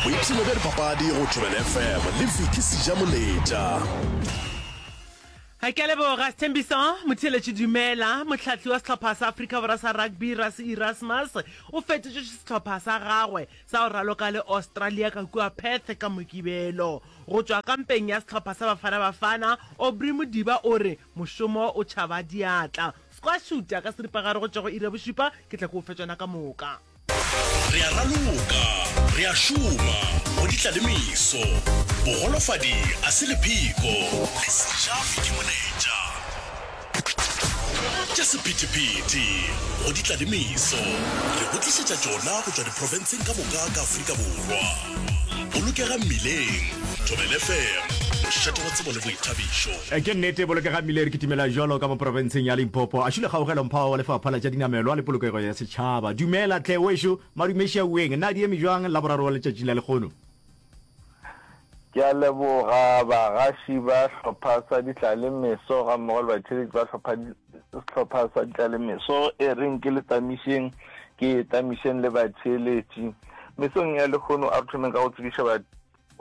boipshino bja dipapadi go thobela fm le viki seja moletša ke a leboga sethembiso motheeletši dumela motlhatli wa sehlopha sa afrika borwa sa rugby rase erasmus o fetotše sehlopha sa gagwe sa go raloka le australia ka kua perth ka mokibelo go tšwa ka mpeng ya sehlopha sa bafana bafana obry modiba o re mošomo o tšhaba diatla squashuta ka seripagare go tšwa go ira bošupa ke tla ke o fetšana ka moka Re a raloka, re a šoma, go di tla le meso. Bogolofadi a se lepheko, le sejafi ke moletša. Tša sephethephethe, go di tla le meso, re go tlišetša tšona go tšwa diprofenseng ka moka ka Afrika Borwa. Bolokega Mmileng, Thobela FM, mošate wa tsebo le boithabišo. Ke nnete, Bolokega Mmileng re kitimela bjalo ka mo profenseng ya Limpopo. A šule kgaugelo mphawa wa Lefapha la tša Dinamelwa le Polokego ya Setšhaba. Tšhaba, Dumela tlhe wešo, madumeši a ueng, na di eme bjang Laboraro wa letšatši la lekgono? Ke a leboga bagaši ba hlopha sa Ditlalemeso gammogo le batšheletši ba hlopha sehlopha sa Ditlalemeso. E reng ke le tamišeng, ke tamišeng le batšheletši. Mesong ya lekgono a re thomeng ka go tsebiša ba.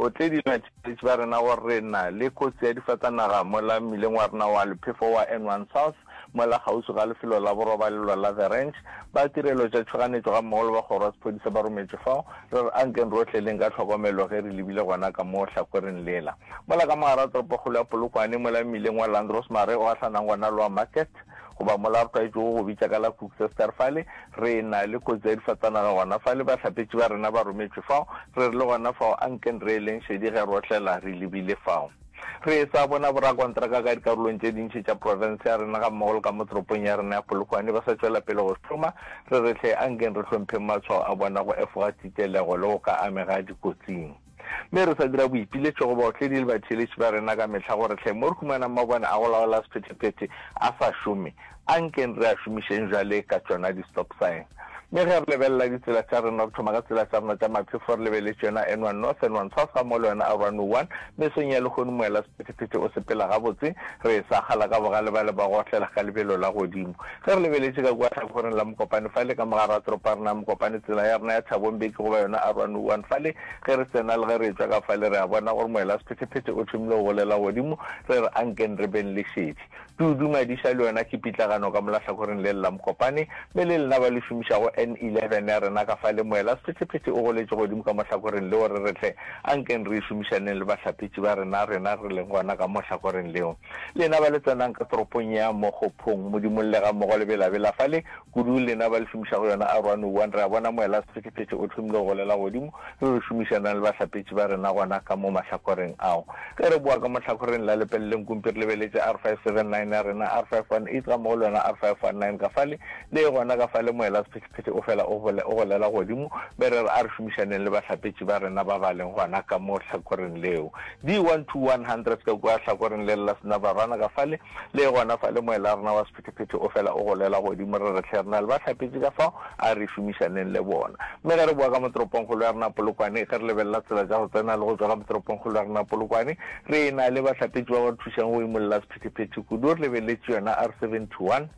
O tle di na tšeletši ba rena gore re na le kotsi ya difatanaga mola mmileng wa rena wa lephefo wa N1 South mola kgauswi ga lefelo la borobalelo la The Ranch. Ba tirelo tša tšhoganetšo ga mmogo le ba kgoro ya sephodisa ba rometšwe fao. Re re ankeng re o tleleng ka tlhokomelo ge re lebile gona ka mo hlakwereng lela. Mola ka mogara toropokgolo ya Polokwane mola mmileng wa Landros Mare o gahlanang gona le wa Market, Goba mola re tlwaetšego go bitša ka la Koeksestraat fale, re na le kotsi ya difatsanaga gona fale. Bahlapetši ba rena ba rometšwe fao, re rile gona fao, Anken re eleng šedi ge re otlela, re lebile fao. Re e-sa bona borakontraka ka dikarolong tše dintši tša profense ya rena gammogo le ka mo toropong ya rena ya Polokwane ba sa tšwela pele go šoma. Re re, Hle anken re hlompheng matshwao a bona go efoga titelego le go ka amega dikotsing. Mme re sa dira boipiletšo go baotledi le batheeletši ba rena ka mehla gore hle mo re humanang mabone a go laola sephetephete a sa šome, a nkeng re a šomišeng bjale ka tšona di-stop sign. Mme ge re lebelela ditsela tša rena, re thoma ka tsela tša rena tša maphefo re lebeletše yona N1 North, N1 South ga mmogo le yona R101. Mesong ya lehono moela sephetephete o sepela gabotse, re e sakgala ka bogale bale ba go otlela ka lebelo la godimo. Ge re lebeletše ka kua hlakgoreng la mokopane fale ka mo gare ga toropo ya rena ya Mokopane, tsela ya rena ya Thabong be ke go ba yona Arowane One fale. Ge re tsena le ge re etšwa ka fale re a bona gore moelasephetephete o thomile go bolela godimo, re re ankeng re beng le šetše. Tudu Madiša le yona ke pitlagano ka mola hlakhoreng lele la Mokopane, mme le lena ba le šomišago N eleven ya rena ka fale, moelasephetephete o goletše godimo ka mo hlakhoreng leo re re tle ankeng re e šomišaneng le bahlapetši ba rena, rena re leng gona ka mo hlakhoreng leo. Lena ba le tsenang ka toropong ya Mokgophong, Modimo llega mmogo le belabela fale, kudu lena ba le šomišago yona Aroanowan, re a bona moela sephethephethe o hlomile go golela godimo, re re šomišanang le bahlapetši ba rena gona ka mo mahlakoreng ao. Ge re bowa ka mo hlakoreng la lepeleleng kumpi re lebeletše R579 ya rena, R518 gammogo le yona R519 ka fale, le gona ka fale moela sephethephethe o fela o golela godimo, mme re re a re šomišaneng le bahlapetši ba rena ba ba leng gona ka mo hlakoreng leo. Di 1 to 100 ka kua hlakoreng le la Snababana ka fale, le gona fale moela rena wa sephetephete o fela o golela godimo, re re hle rena le ba hlapetše ka fao, a re šomišaneng le bona. Mme ge re bowa ka mo toropongkgolo ya rena Polokwane, ge re lebelela tsela tša go tsena le go tšwa ka mo toropongkgolo ya rena Polokwane, re e na le bahlapetše ba ba re thušang go imolla sephetephete kudu, re lebeletše yona R71.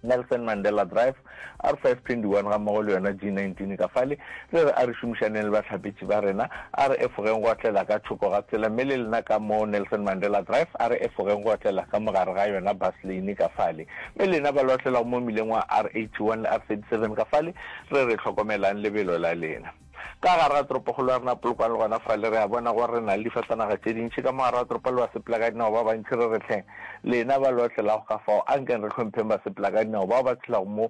Nelson Mandela Drive, R521 ga mmogo le yona G19 ka fale. Re re a re šomišaneng le bahlapetši ba rena, a re efogeng go otlela ka thoko ga tsela mme le lena ka mo Nelson Mandela Drive a re efogeng go otlela ka mogare ga yona bus lane ka fale. Mme lena ba le otlelago mo mmileng wa R81 le R37 ka fale, re re hlokomelang lebelo la lena. Ka gare ga toropokgolo ya rena Polokwane le gona fale re a bona gore re na le difatanaga tše dintši. Ka mo gare ga toropo le basepelakadinao ba bantši re re hleng. Lena ba lo otlelago ka fao, ankeng re hlompheng basepelakadinao bao ba tshelago mo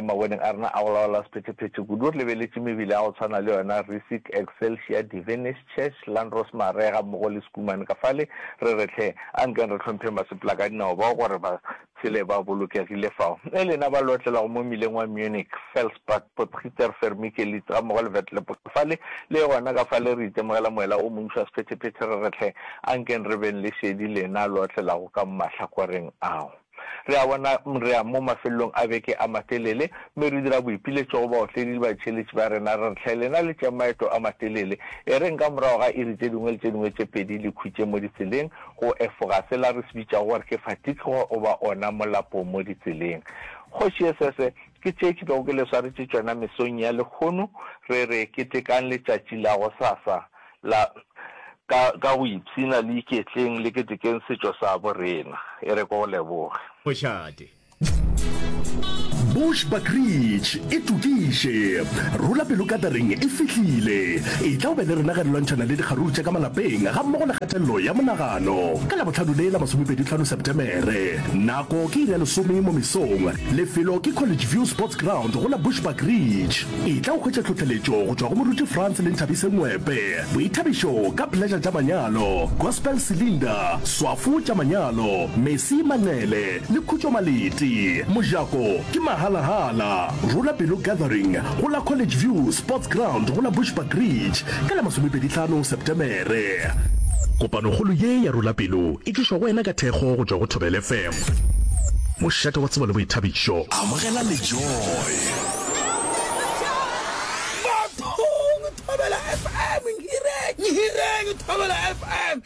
maboneng a rena a go laola sephethephethe kudu. Re lebeletše mebele ya go tshwana le yona Rissick, Excelsior, Devenish, Church, Landros Mare gammogo le Schoeman ka fale. Re re hleng. Ankeng re hlompheng basepelakadinao bao gore ba Tshele ba bolokegile fao. Ge lena ba lotlelago mo mmileng wa Munich, Felsbach, Potgieter, Fermike, Lietz gammogo le Vetlebos, fale le gona ka fale re itemogela moela o montši wa sephetephete re re hle, ankeng re beng le šedi lena lo otlelago ka mahlakoreng ao. Re a bona re ya mo mafelelong a beke a matelele, mme re dira boipiletšo go baotledi le batheeletši ba rena re re hle, lena le tšee maeto a matelele, e reng ka morago ga iri tše dingwe le tše dingwe tše pedi le khutše mo ditseleng, go efoga sela re se bitšago gore ke fatigue goba ona molapo mo ditseleng. Kgoši ye sese ke tše ke bego ke le swaretše tšona mesong ya lekgono re re ketekang letšatši la go sasa la ka ka go ipshina le iketleng le ketekeng setšo sa bo rena. E re ke go leboge. Mošate. Bush Buckridge e tokiše. Rula pelo katering e fihlile. E tla o be le rena ge re lwantšhana le dikgaruru tša ka malapeng ga mmogo le kgatelelo ya monagano. Ka Labohlano le la masomepedi tlhano Sepetemere. Nako ke iri ya lesome mo mesong. Lefelo ke College View Sports Ground go la Bush Buckridge. E tla o hwetša tlhohleletšo go tšwa go moruti Frans le Nthabise Ngwepe, boithabišo ka Pleasure tša manyalo, Gospel Cylinder, Swafo tša manyalo, Mercy Manqele, Le Khutšo Malete, mojako ke mahala-hala. Rula Pelo Gathering go la College View Sports Ground go la Bushbuck Ridge ka la masomepedi tlhano Septemere. Kopanokgolo ye ya Rula Pelo e tlišwa go wena ka thekgo go tšwa go Thobela FM. Mošate wa tsebo le boithabišo. Amogela le Joy. Bathong Thobela FM, Nhireng, Nhireng Thobela FM.